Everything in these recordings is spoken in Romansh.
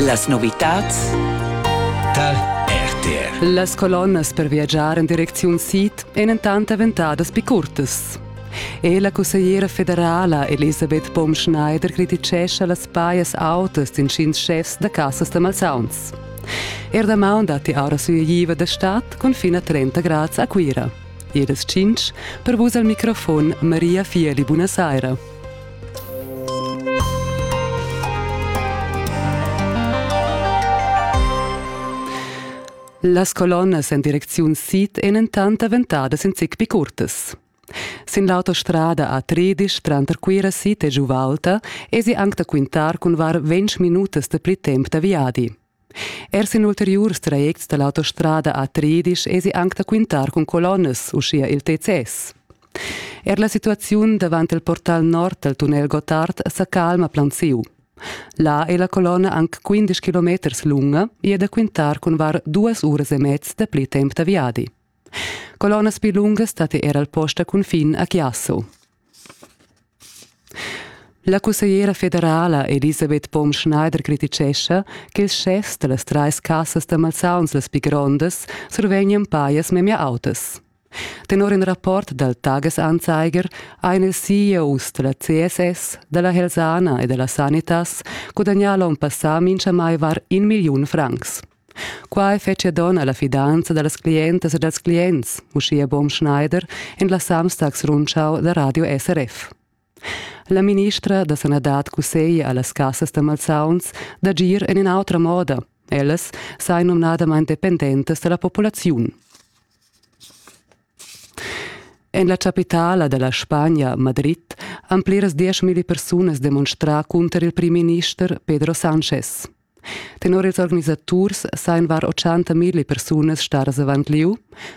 Las novitads tar RTR. Las colonnas per viagiar en direcziun sid èn entant daventadas pli curtas. E la cussegliera federala Elisabeth Baum-Schneider crititgescha las pajas autas d'intgins schefs da cassas da malsauns. Er damaun datti aura sugliva da stad cun fin a 30 grads a Cuira. E das 5 per vus al microfon Maria Fieli, buonasera. Las colonnas en direcziun sid èn entant daventadas in zic pli curtas. Sin l'autostrada a Tredisch tranter Cuira sid e Giuvalta èsi anc da quintar cun var ventg minutas da pli temp da viadi. Er sin ulteriurs trajects da l'autostrada a Tridisch esi anc da quintar cun colonnas, uschia il TCS. Er la situaziun davant il portal nord del tunnel Gottard sa calma planziu. Là è la colonna anc 15 km lunga e è da quintar cun var duas uras e mezz da pli temp da viadi. Colonnas più lunghe state era al posta cun fin a Chiasso. La cussegliera federala Elisabeth Baum-Schneider crititgescha ch'ils schefs da las trais cassas da malsauns las pli grondas survegnan pajas memia autas. Tenor in rapport dal Tagesanzeiger ein ils CEOs da la CSS, della Helsana e della Sanitas gudagnà l'onn passà mintgamai var in milliun francs. Quai fetschia donn alla fidanza dallas clientas e dals clients, uschia Bom Schneider en la Samstags Rundschau da Radio SRF. La ministra da sanadad cusseglia allas cassas da malsauns d'agir en in'autra moda. Ellas sain numnadamain dependentas da la populaziun. En la chapitala della Spagna, Madrid, han pliras dieschmilli persunas demonstrà cunter il primminister Pedro Sánchez. Tenor ils organisaturs sajan var 80.000 persunas stadas avant lieu,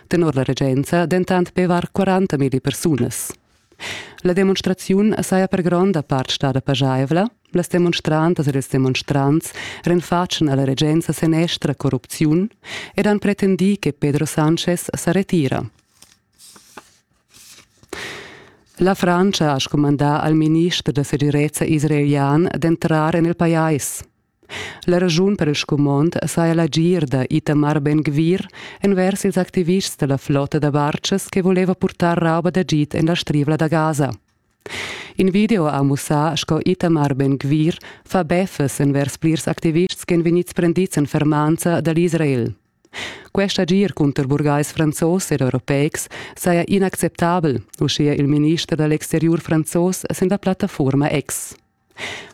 tenor la regenza dentant be var 40.000 persunas. La demonstraziun saja per gronda part stada pajaivla, las demonstrantas ed ils demonstrants renfatschan alla regenza senestra corrupziun ed han pretendì che Pedro Sanchez sa retira. La Frantscha ha scumandà al minister da segirezza israelian d'entrar en il pajais. La raschun per il scumond saja l'agir da Itamar Ben-Gvir envers ils activists da la flotta da bartschas che voleva purtar rauba d'agid en la strivla da Gaza. In video ha mussà sco Itamar Ben-Gvir fa beffes envers plirs activists ch'èn vegnids prendids en fermanza da l'Israel. Quest agir cunter burgais franzos ed europeics saja inacceptabel, uschia il minister da l'exteriur franzos sin la plattafurma X.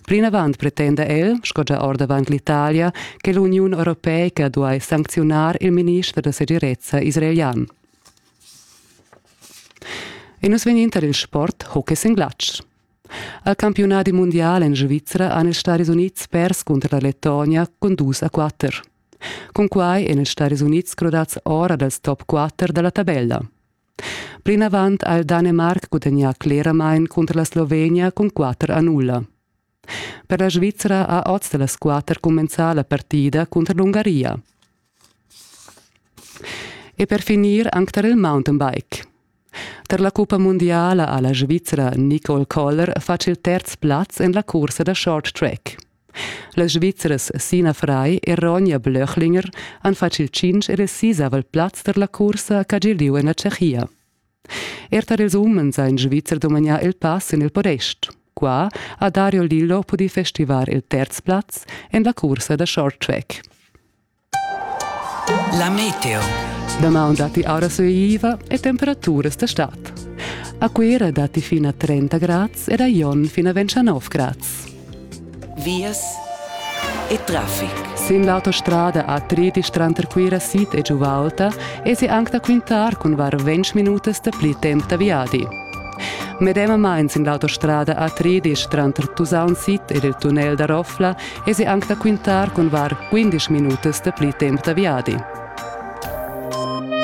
Plinavant pretenda el, sco gia ordavant l'Italia, che l'Uniun europeica duai sancziunar il minister da segirezza israelian. E nus vegnin tar il sport hockey sin glatsch. Al campiunadi mundial en Svizra han ils Stadis Unids pers cunter la Lettonia cun dus a quatter. Cunquai èn els Stads Unids crudads ora dals top quatter da la tabella. Plinavant ha il Danemarc gudagnà cleramain cunter la Slovenia cun quatter a nulla. Per la Svizra ha oz da las quatter cumenzà la partida cunter l'Ungaria. E per finir anc tar il mountainbike. Tar la cuppa mundiala ha la Svizra Nicole Koller fatg il terz plaz en la cursa da short track. Las Svizras Sina Frei e Ronja Blöchlinger han fatg il tschintg e il sisavel plaz tar la cursa ch'ha giu lieu en la Tschechia. Er tar ils umens ha in Svizzer dumagnà il pass en il podest. Qua ha Dario Lillo pudì festivar il terz plaz en la cursa da short track. La meteo. Damaun datti aura sueiva e temperaturas da stad. A Cuera datti fino a 30 grads ed a Jon fino a 29 grads. Vias e traffic. Sin l'autostrada a Tritisch tranter Cuira Sid e Giuvalta esi anc da quintar cun var 20 minutas da pli temp da viadi. Medemamain sin l'autostrada a Tritisch tranter Tusaun Sid ed il tunnel da Roffla esi anc da quintar cun var 15 minutas da pli temp da viadi.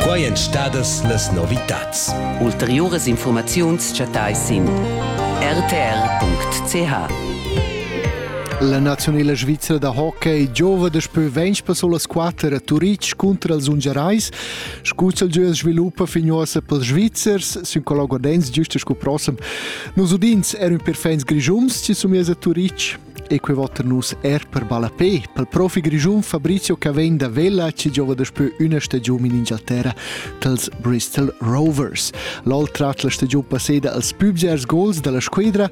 Quai èn stadas las novitads. Ulteriuras infurmaziuns chattais sin rtr.ch. La nazionala svizra da hockey giova daspö ventg passo las quatter a Turitg contra els ungarais. Scuzzal giu sviluppa fin uossa pels Svizzers, sün colloguardenz giusta scu prossem. Nos udins eran perfins grigiums ci somiers a Turitg. E quei votan nus er per ballapé. Per il profi grischun Fabrizio Cavegn da Vella ci giova daspö üna stagiun in Inghilterra dels Bristol Rovers. L'ol trat la stagiun passeda als pübgers gols dalla squadra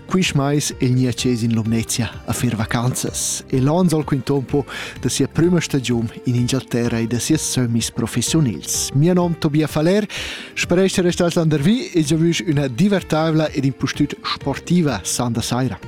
quist mais il Niaces in Lumnezia a fer vacanzas e l'on sol quintompo da sia prima stagiun in Inghilterra e da sia semis professionils. Mio nom Tobia Faller, speresce restas landervi e giovüsch üna divertaivla ed impustüt sportiva sanda saira.